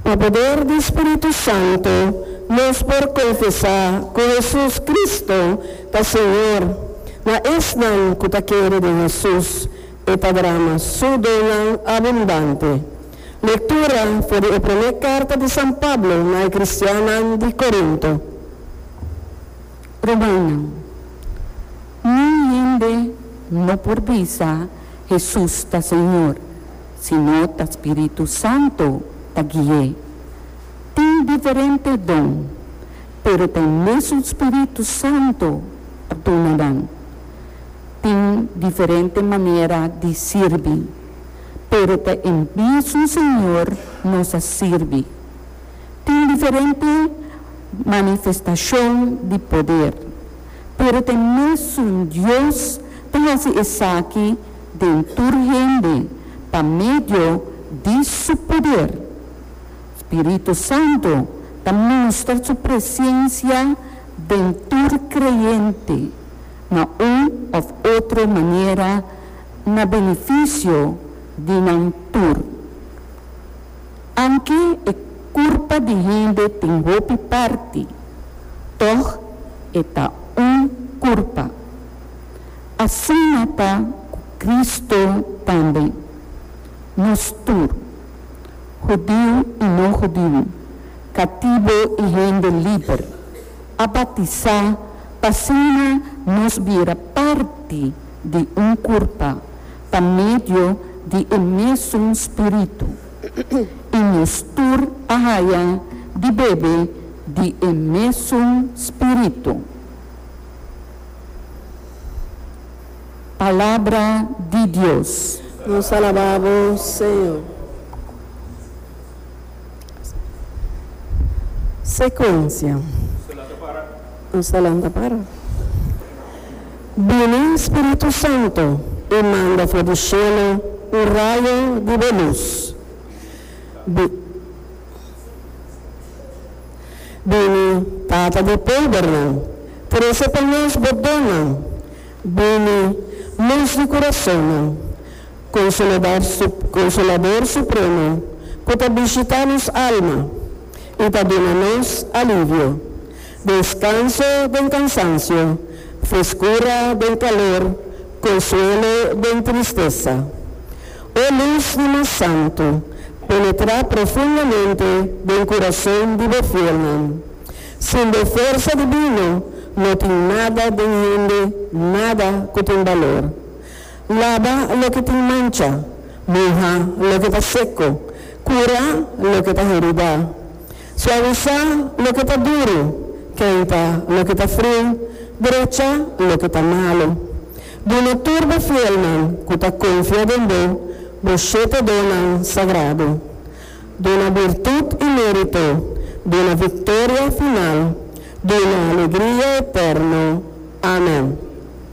Pa poder di Spiritu Santu nos por konfesá ku Hesus Kristu ta Señor. Na esnan ku ta kere den Hesus, E ta drama Su donnan abundante. Lektura for di e promé karta di San Pablo na e kristiannan di Korinto. Romannan. Niun hende no por bisa Hesus ta Señor, sino ta Spiritu Santu ta gui'é. Tin diferente don, pero ta e mesun Spiritu Santu ta duna nan. Tin diferente manera di sirbi, pero ta e mesun Señor nos a sirbi. Tin diferente manifestashon di poder, pero ta e mesun Dios ta hasi esaki den tur hende pa medio di su poder. Spiritu Santu ta mustra su presensia den tur creyente na un of otro manera na beneficio di nan tur. Anke e kurpa di hende tin hopi parti, tòg e ta un kurpa. Asina ta ku Kristu tambe. Nos tur, hudiu i no hudiu, katibu i hende liber, a batisá pa asina nos bira parti di un kurpa. pa medio di e mesun Spiritu, i nos tur a haya di bebe di e mesun Spiritu. Palabra di Dios. Nos alaba bo, Señor. Secuencia. Nos ta lanta para. Bini Spiritu Santo i manda for di shelu un rayo di bo lus. Bini Bini Tata di podernan, trese pa nos bo donnan. Bini Lus di kurasonnan, Konsoladar Konsolador Supremo ku ta bishitá nos alma i ta duna nos alivio. Descanso den cansancio, frescura den calor, consuelo den tristeza. O luz di mas santo, penetra profundamente den curazon di bo fielnan. Sin bo fuerza divino no tin nada den hende, nada cu tin balor. Laba loke tin mancha, muha loke ta seco, cura loke ta herida. Suavisá loke ta duru, kenta loke ta friu, drechá loke ta malu. Duna tur bo fielnan ku ta konfia den bo, bo shete donnan sagradu. Duna birtut i mérito, duna viktoria final, duna alegria eterno. Amen.